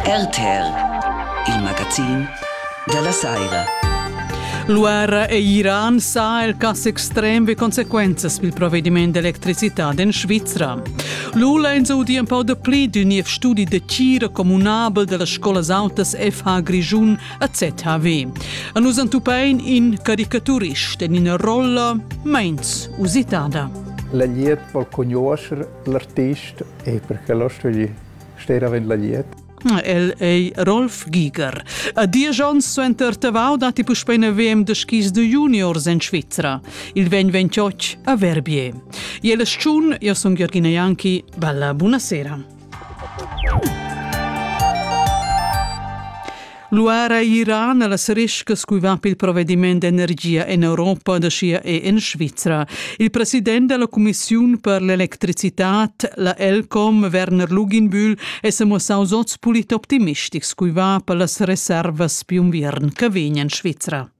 RTL, il magazin dalla saira. L'uerra e Iran sa il cass extrem vi consequenzas bil provvediment d'electricità in Svizra. Lula ins audi un pau de pli d'un niev studi de cira comunabel della Scolas Altas FH Grischun a ZHW. A nus antupein in caricaturist en ina rolla meins usitada. La glieud po conoscer l'artist e perché l'ho studi stè davent la liet. El ei Rolf Giger. A diesch onns suenter Tavau datti puspei in VM de skis de juniors en Svizra. Il vegn ventioch a Verbier. Iela Schun, io sono Georgina Ianchi, balla buonasera. Luara Iran las riscas cui va pel provvediment d'energia en Europa da sia e en Svizra. Il president della Commissione per l'electricitat, la Elcom, Werner Luginbühl, es amossaus oz pulit optimistics cui va per las reservas più unviern che vegnan in Svizra.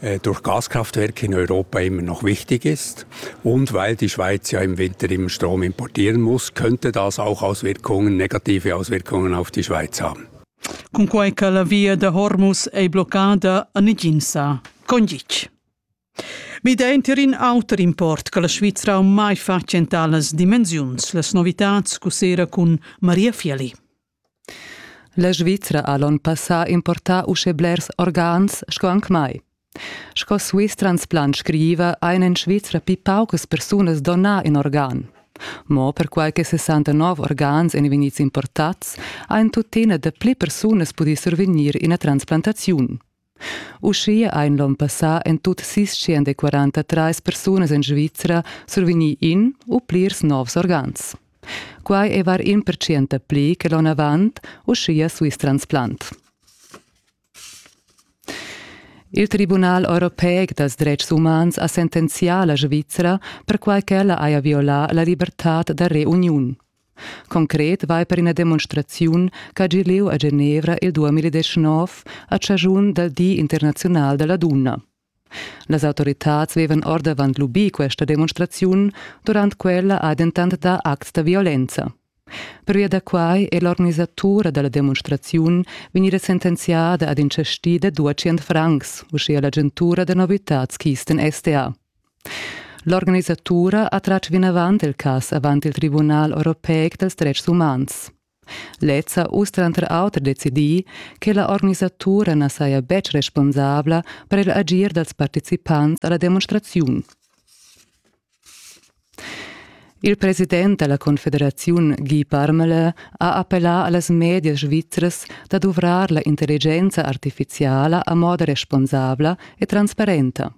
äh, durch Gaskraftwerk in Europa immer noch wichtig ist. Und weil die Schweiz ja im Winter immer Strom importieren muss, könnte das auch Auswirkungen, negative Auswirkungen auf die Schweiz haben. Cunquei che la via da Hormus ei bloccada a Niginsa. Condic. Mi denter in auter import che la Svizra mai fa centralas dimensiuns, las novitats cu sera cun Maria Fieli. La Svizra ha l'onn passà importà uschè blers organs sco anc mai. Sco Swiss Transplant scriva ein en Svizra pli paucas persunas donà in organ. Mo perquai che 69 organs ein vegnids importats, ein tuttina da pli persunas pudì survegnir ina transplantaziun. Uschia ein l'onn passà en tut sis da quarantatrais persunas en Svizra survegni in u plirs novs organs. Quai è var in percent pli che l'onn avant, uschia Swiss Transplant. Il Tribunal europeic dals dretgs umans ha sentenzià la Svizra perquai ch'ella haja violà la libertad da reuniun. Concret vai per ina demonstraziun ch'ha gi lieu a Genevra il 2019 a chaschun dal Di internaziunal da la dunna. Las autoritads vevan ordavant lubì questa demonstraziun, durant quella ha dentant dà acts da violenza. Pervia da quai è l'organisatura da la demonstraziun vegnida sentenziada ad in chastì da 200 francs, uschia l'agentura da novitads Kisten SDA. L'organisatura ha tratg vinavant il cas avant il Tribunal europeic dels dretgs umans. Lez ha uss tranter auter decidì che la organisatura na saja betg responsabla per il agir dals participants a la demonstraziun. Il president da la Confederaziun Guy Parmelin ha appellà a las medias svizras da duvrar la intelligenza artifiziala a moda responsabla e transparenta.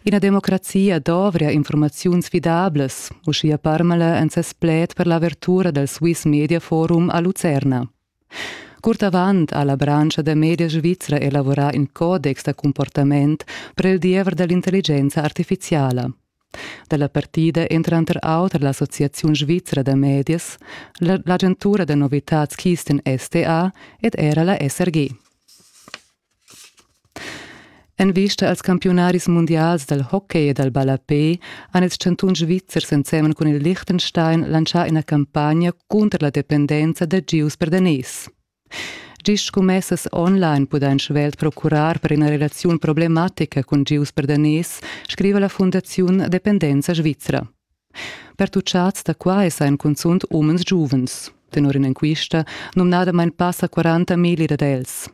Ina democrazia dovria infurmaziuns fidablas, uschia Parmala en ses pled per l'avertura dal Swiss Media Forum a Lucerna. Curt avant ha la branscha da media svizra elavorà in codex da comportament per il diever da l'intelligenza artifiziala. Da la partida èn tranter auter l'Associaziun svizra da medias, l'agentura da novitads Kisten STA ed era la SRG. En vista als campiunaris mundials dal hockey e dal ballapè han ils chantuns svizzers ensemen cun il Liechtenstein lantschà ina campagna cunter la dependenza da gius per daners. Gist sco messas online pudain svelt procurar per ina relaziun problematica cun gius per daners, scriva la Fundaziun Dependenza Svizra. Pertuccads da quai sajan cunzunt umens giuvens. Tenor in'enquista numnadamain passa 40 milli dad els.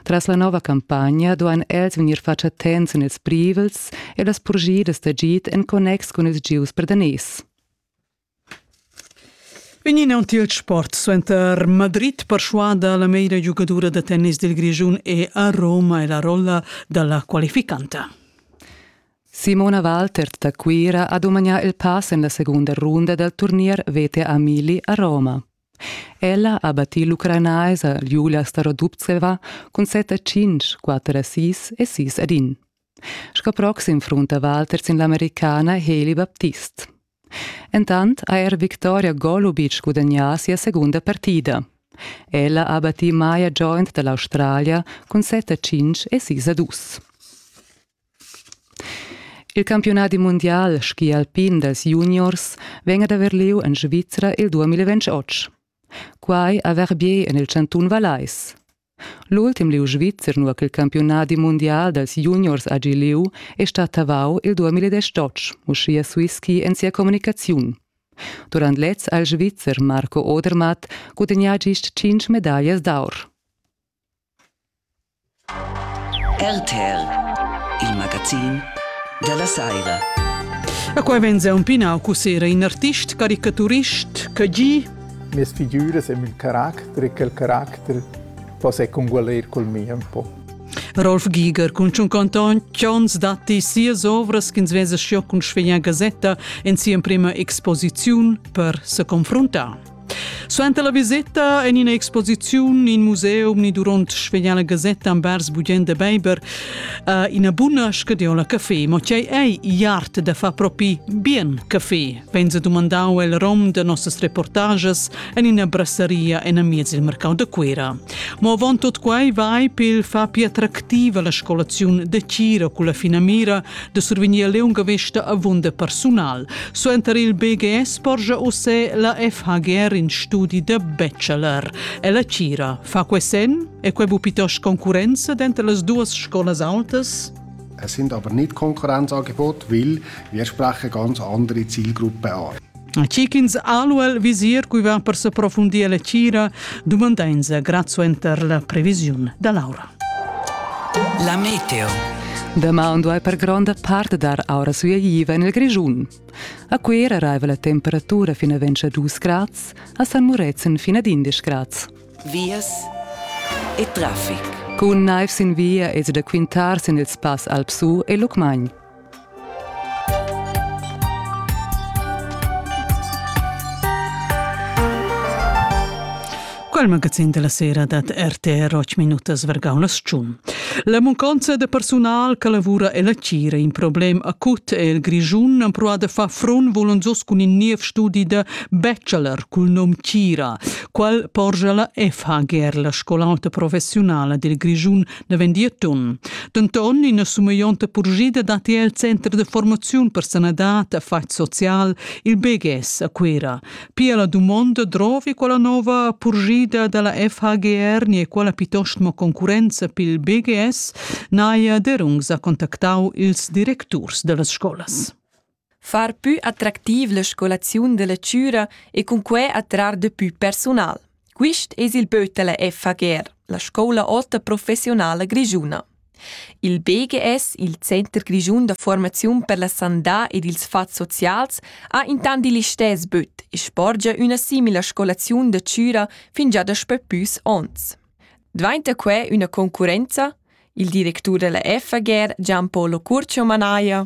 Tras la nova campagna duain els vegnir fatg attents en ils privels e las purgidas d'agid en connex cun ils gieus per daners. Vegnin aunc il sport suenter Madrid perschuada la meira giugadura da tennis dil Grischun e a Roma e la rolla dalla qualificanta. Simona Waltert da Cuira ha dumagnà il pass en la segunda runda dal turnier VTA Mili a Roma. Ella ha battì l'ucranaisa Julia Starodubtseva cun set a cinc, quatter a sis e sis ad in. Sco proxim frunta Waltert sin l'americana Hailey Baptist. Entant ha er Victoria Golubic gudagnà sia segunda partida. Ella ha battì Maya Joint da l'Australia cun set a cinc e sis a dus. Il campiunadi mundial ski alpin dals juniors vegn ad haver lieu en Svizra il 2028. Quai a Verbier en il chantun Vallais. L'ultim lieu svizzer nua ch'il campiunadi mundial dals juniors hagi lieu è stat Tavau il 2018, uschia Swisski en sia communicaziun. Durant lez ha il Svizzer Marco Odermatt gudagnà gist 5 medaglias d'aur. RTL, il magazin dalla saira. E qua venza un pinau cussera in artist caricaturist che gi Mes figuras e il caracter e quel caracter possa congualer col mi un po'. Rolf Giger cun Tschun Canton Chons datti sias ovras ch'ins vesa scio cun Sveglia Gazetta en sia prima exposiziun per se confruntar. Suenter la viseta en ina exposiziun in museum ni duront svegliar la gasetta envers Bugend de Beiber uh, ina buna scadiola café. Ma tgei ei iart da far propi bien café? Venza dumandau el rom de nossas reportages en ina brasseria en amiez il mercau de Cuera. Ma avon tot quei vai pil far pli attractiva la scolaziun de Cira culla finamira de survegnir leunga vesta avunda persunal. Suenter il BGS porgia usse la FHGR in studi de bachelor. E la cira fa que sen e que bu pitos concurenza denter las duas scolas altas? Es sind aber nicht Konkurrenzangebot, weil wir sprechen ganz andere Zielgruppen an. Chi ch'ins aluel visir guivan per s'approfundir la tgira dumandainsa grazuenter la previsiun da l'aura. La meteo. Be maun duai per gronda part dar aura suiaiva en il Grischun. A Cuera raiva la temperatura fin a 22 grads, a San Murezzan fin ad 11 grads. Vias e traffic. Cun naiv sin via es da quintar sin il spass Alpsu e Lucmagn. Quel magazin della sera dat RTR 8 minutas vergau la sciun. La munconza de personal che lavura e la cira in problem acut e il Grischun han proa de far front volonzos cun in niev studi de bachelor cul nom Cira, qual porgia la FHGR, la scolauta professionala dil Grischun ne vendir ton. Denton ina sumeionta purgida datti el center de formaziun per sanadad e fatg social il BGS a Cuira. Pia la dumonda drovi quella nova purgida dalla FHGR ni quella piuttosto concurenza pil BGS naia derungs a contactau ils directurs dellas scolas. far pü attractiv la scolaziun da lectura e cun quai attrar da pü persunal. Quist es il böt da la FHGR, la scoula ota professionala grischuna. Il BGS, il Center grischun da formaziun per la sandà ed ils fats socials, ha intant il istess böt e sporgia üna simila scolaziun da chüra fin già daspö püs ons. Dvainta quai üna concurrenza? Il directur della FHGR Gianpolo Curcio manaja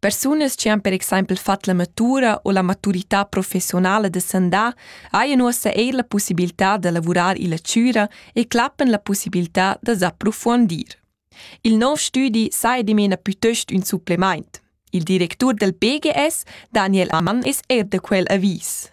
Persunas che han per exempel fatg la matura u la maturità professionala da sandà hajan ussa eir la possibilità da lavurar illa chüra e clappan la possibilità da s'approfuondir. Il nouv stüdi saja dimena pütöst ün supplement. Il directur del PGS, Daniel Ammann, es eir da quel avis.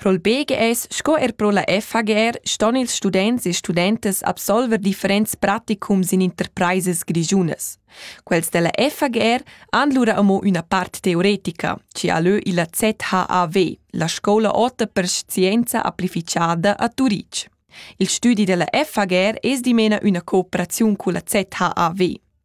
Pro'l BGS sco er pro la FHGR ston ils students e studentas absolver differents praticums in interpraisas grischunas. Quels della FHGR han lura amo üna part teoretica, ci ha lö illa ZHAW, la scoula ota per scienza amplifichada a Turitg. Il studi della FHGR es dimena üna cooperaziun culla ZHAW.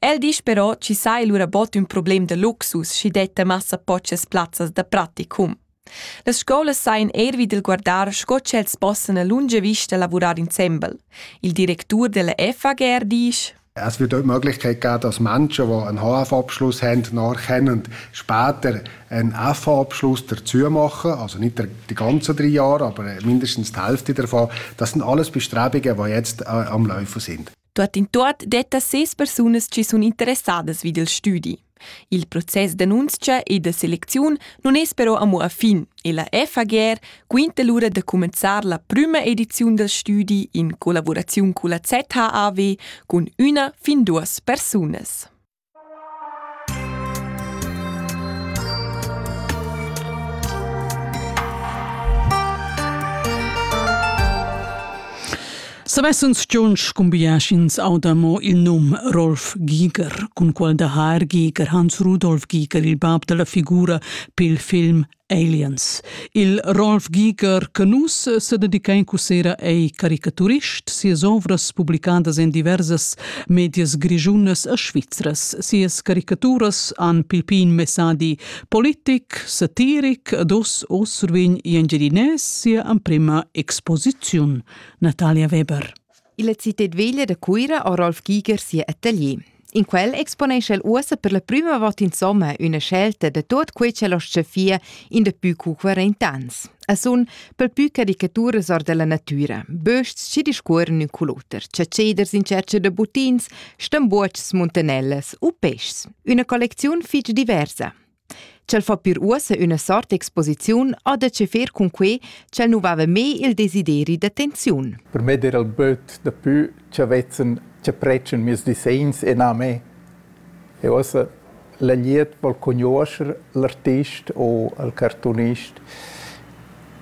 El disch però chi saja lura bod ün problem da luxus schi detta massa pochas plazzas da praticum. Las scolas sajan eir vi dal guardar sco ch'els possan a lunga vista lavurar insembel. Il directur della FAGR disch es wird auch die Möglichkeit gegeben, dass Menschen, die einen HF-Abschluss haben, nachkennen, später einen FH-Abschluss dazu machen, also nicht die ganzen drei Jahre, aber mindestens die Hälfte davon. Das sind alles Bestrebungen, die jetzt äh, am Laufen sind. Tuottintuot detta ses persunas chi sun interessadas vi del stüdi. Il process d'annunzia e da selecziun non es però amo a fin e la FAGR quinta lura da cumenzar la prüma ediziun del stüdi in collaboraziun culla ZHAW cun üna fin duos persunas. Savessan Jon scumbiaschins auda mo il num Rolf Giger, cun qual da Haar Giger Hans Rudolf Giger, il bab dalla figura pil film Aliens. Il Rolf Giger Canus sededica in cussera ei caricaturist, sias ovras publicadas en diversas medias grigiunas e svizras. Sias caricaturas han pilpin messadi politic, satiric ed os o survegn in engiadinès sia emprema exposiziun. Natalia Weber. Illa citad veglia da Cuira ha Rolf Giger sia atelier. In quel exponescha el uossa per la prüma vot insomma üna scelta da tuot quei ch'el ho chefia in daplü cu 40 ans. A sun pel pü caricaturas or della natüra, bösts chi discuorren ün cul oter, ciaceders in tschercha da buttins, stambuotschs muntanellas u peschs. Üna collecziun fich diversa. Ch'el fa pir uossa üna sort exposiziun ha da chefar cun quai ch'el nu vava mê il desideri d'attenziun. Per me d'eira il böt dapü cha vezzan cha predschan mieus disegns e na a me. E uossa la glieud vòl cugnuoscher l'artist o al cartoonist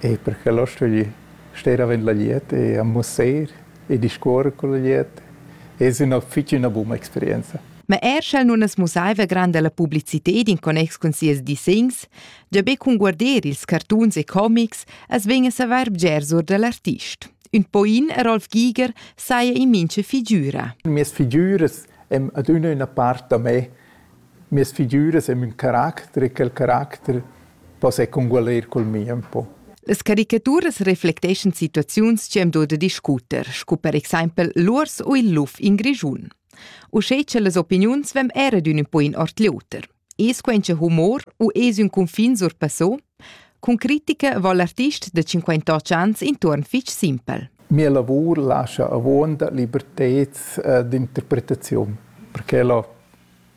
e per quel ho stuì stare avant la glieud e a musair. e discuor cul gliet es ün fich üna buna experienza. Ma er sch'el nun es mussaiva granda la publicited in connex cun sias dissegns, già be cun guarder ils cartuns e comics as vegn a savair bgers our da l'artist. Ün poin a Rolf Giger saja in mincha figüra. Mias figüras èn adüna üna part da me Mias figüras e mün caracter e quel caracter possa eir congualer cul mi ün po. Las caricaturas reflecteschan situaziuns chi am do da discuter, scu per exaimpel l'uors u il luf in Grischun. Uschè cha las opiniuns vegn eir adün ün po in ord l'oter. Es quaincha humor u es ün cunfin surpassò? Cun critica vo l'artist da 58 ans intuorn fich simpel. Mia lavur lascha avuonda liberteds d'interpretaziun, perché ella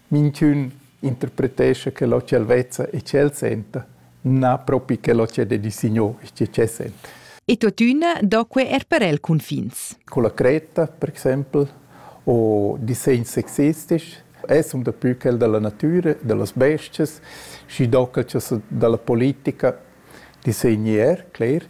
Minchün interpretescha che l'ho ch'el vezza e ch'el senta, na propi che l'ho ch'el dedi signur, schi ch'el senta. E tuottüna do que eir per el cunfins. Con la cretta, per exaimpel, o disegns sexistics, es ün dapü quel da la natüra, da las bestias, schi do quel cha da la politica disegni er, cler,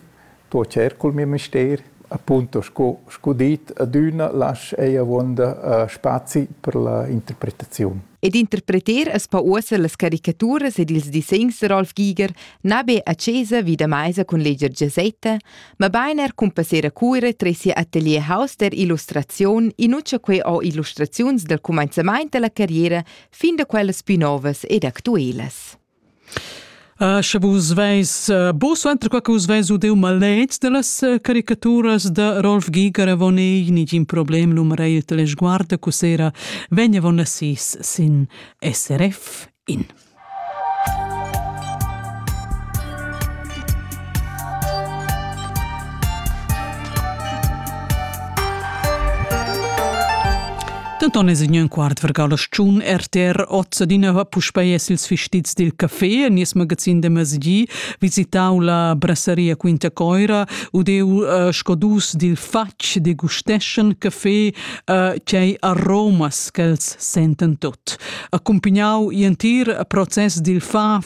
Sto tschert cul miu mester, appunto sco sco dit, adüna lasch ei avuonda spazi per la interpretaziun. Ed interpreter es pa uossa las caricaturas ed ils disegns da Rolf Giger na be a chesa vi da maisa cun leger gasetta, mabain er cun passer a Cuira tre sia atelier house der illustraziun, inuccia quei ho illustraziuns dal cumanzamaint da la carriera fin da quellas plü novas ed actuelas. Uh, sche vus veis uh, bu suenter qua che vus veis udeu maletgs dallas uh, caricaturas da Rolf Giger avon ei nigin problem l'um reiet la sguarda cu sera vegn avon a sis sin SRF in. Denton es ign quart vergal a schun RTR ozza di nova puspei es ils fistits dil café nies magazin de mesdi visitau la brasseria Quinta Coira u deu uh, scodus dil fatg de gusteschen café uh, chei aromas ch'els senten tot. Accompagnau i entir process dil fa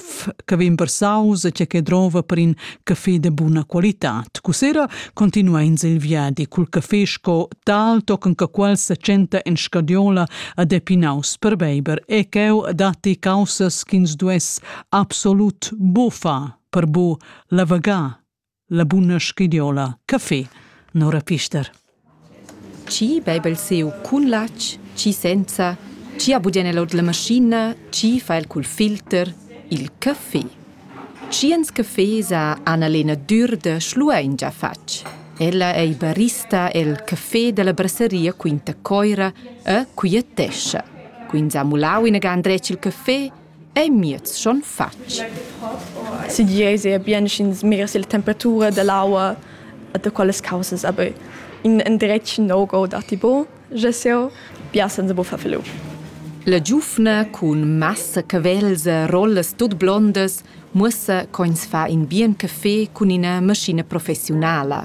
che vegn versaus e che drova per in caffè de buna qualitad. Cussera continua ins il viadi cul caffè sco tal tochen che quel se tschenta en scadiola a depinaus per beiber e cheu datti causas ch'ins duess absolut bufa per bu lavegar La buna schidiola, caffé, Nora Pister. Chi bebel seu cun latg, chi senza, chi ha budien el ord la maschina, chi fa el cul filter, il caffé. Tschiens caffés ha Annalena Dürde schluein già fatg. Ella ei barista el caffé dalla brasseria Quinta Coira e quietescha. Quins ha mulau inagant dretg il caffé ei miez schon fatg. Siglieis era bien sch'ins mirs la temperatura dell'aua da quelles causas, aber in endretg no-go datti bo, je seu, bia senza bo far felu. La giuvna cun massa cavells e rollas tut blondas muossa ch'ins fa in bien café cun ina maschina professiunala.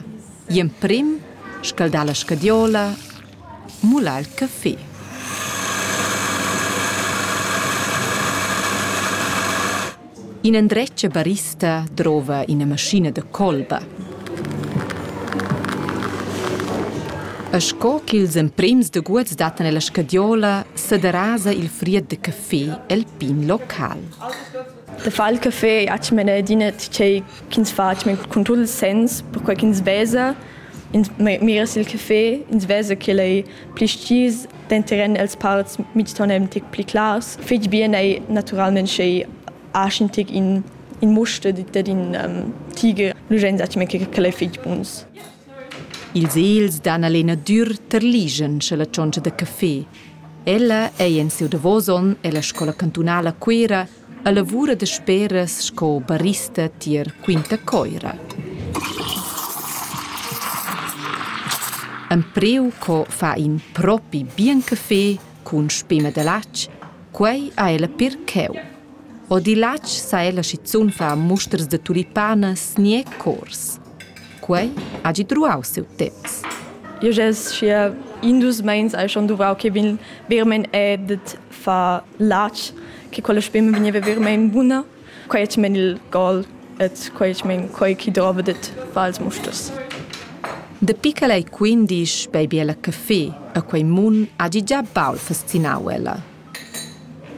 Gl'emprim scaldà la scadiola, mular il café. Ina endretga barista drova ina maschina da colba. E sco ch'ils emprems daguots dattan ella scadiola, sederasa il fried da café el pin local. Da far il caffè gnatsch mena adina tgei ch'ins fa cun tut il sens, perquei ch'ins vesa, ins mira sil caffè, ins vesa ch'el ei pli stgis, denteren els parts mitston ein tic pli clars. Fetg bien ei naturalmein sch'ei aschi tic in in muster dad in um, tigre. Lu ein zatgei che quel ei fetg buns. Ils egls dan alena dür terligen scha la tschontscha da caffé. Ella ei en siu davos onn ella scola cantunala Cuera a lavura da speras sco barista tier Quinta Coira. Empreu co fa in propi bien caffé cun spema da latg, quei ha ella per cheu. O di latg sa ella schizun fa musters da tulipanas ni cors. Quei hagi truau siu temps. Io gest schia in dus meins hai schon duvrau che vin vermein edet fa latg che quella spema vegniva vermein buna. Quei et men il gol et quei et men quei chi drova det vals mustos. Dapi che ei quindisch bei biela caffé a quei mun hagi già baul fascinau ella.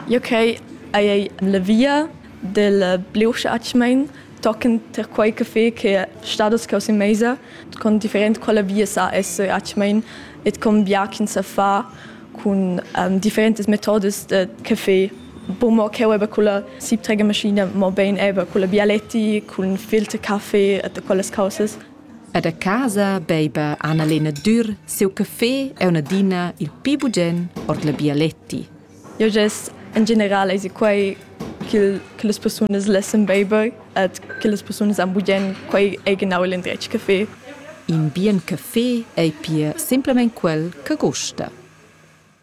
Jeu quei hai ei en la via dil Bliuschatsch mein tochen tier quei café che stat oz cau sin meisa, con different quella via sa esser atsch mein ed con bia ch'ins sa far cun differentas metodas da café. Buca mo cheu eba culla siebträgermaschina, mobein eba culla bialetti, cun filterkaffee e quellas caussas. Ed a casa beiba Annalena Dürr siu caffé e un'adina il pi bugen ord la bialetti. Eu gess in general esi quai ch'il che las persunas lessan beiber ed che las persunas han bugen quai ei genau il indretg caffé. In bien caffé ei pia simplamain quel che gusta.